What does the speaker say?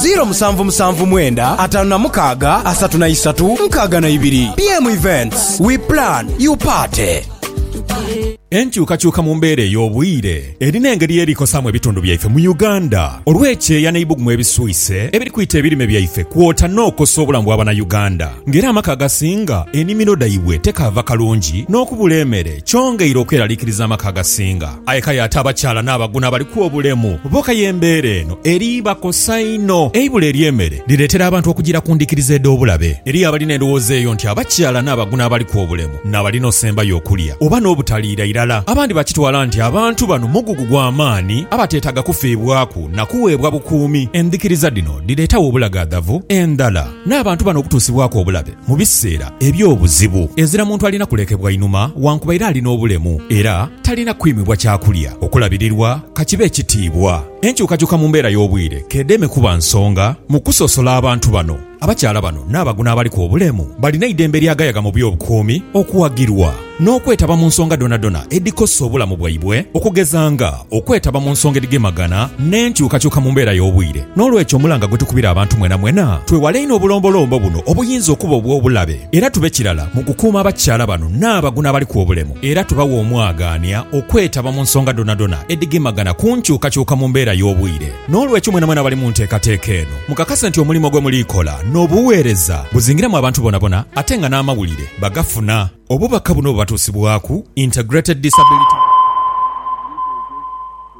Ziro musanvu musanvu mwenda ataanu na mukaaga asatu na isatu nkaaga na ibiri. BM Events, we plan, you party. Enkyukakyuka mu mbeera ey'obwire erina engeri yeri kosaamu ebitundu byaife mu Uganda olw'ekyeeya n'eibugumu ebiswise ebiri kwita ebirime byaife kwota n'okosa obulamu bwa bana Uganda nga era amaka agasinga enimiro dhaibwe tekaava kalungi n'okubula emere kyongeire okweralikiriza amaka agasinga Aye kale ate abakyala n'abaguno abaliku obulemu bo kaya embeera eno eribakosa inho. Eibula ery'emere lireetera abantu okujiira ku ndhikiriza edh'obulabe. Eriyo abalina endhowooza eyo nti abakyala n'abaguno abaliku obulemu n'abalina osembayo okulya oba n'obutaliira irala. Abandi bakitwala nti abantu bano mugugu gwa maani abateetaaga kufiibwaku na kuweebwa bukuumi. Endhikiriza dhino dhireetagho obulagaadhavu endhala n'abantu bano okutuusibwaku obulabe mu biseera eby'obuzibu. Ezira muntu alina kulekebwa inhuma wankubaire ali n'obulemu era. Talina kwimibwa kya kulya, okulabirirwa, ka kibe ekitiibwa. Enkyukakyuka mu mbeera y'obwire k'edeme kuba nsonga mu kusosola abantu bano. Abakyala bano n'abagu n'abaliku obulemu balina eidembe ery'agayaga mu by'obukuumi okuwagirwa n'okwetaba mu nsonga dhonadhona edhikosa obulamu bwaibwe okugeza nga okwetaba mu nsonga edhigemagana n'enkyukakyuka mu mbeera y'obwire. N'olwekyo omulanga gwe tukubira abantu mwenamwena twewale inho obulombolombo buno obuyinza okuba obw'obulabe era tube kirala mu kukuuma abakyala bano n'abagu n'abaliku obulemu. Era tubawa omwagaania okwetaba mu nsonga dhonadhona edhigemagana ku nkyukakyuka mu mbeera y'obwire. N'olwekyo mwenamwena abali mu nteekateeka eno, mukakase nti omulimo gwe muli kola n'obuweereza buzingiramu abantu bonabona ate nga n'amawulire bagafuna. Obubaka buno bubatuusibwaku Integrated Disability Monitoring Group.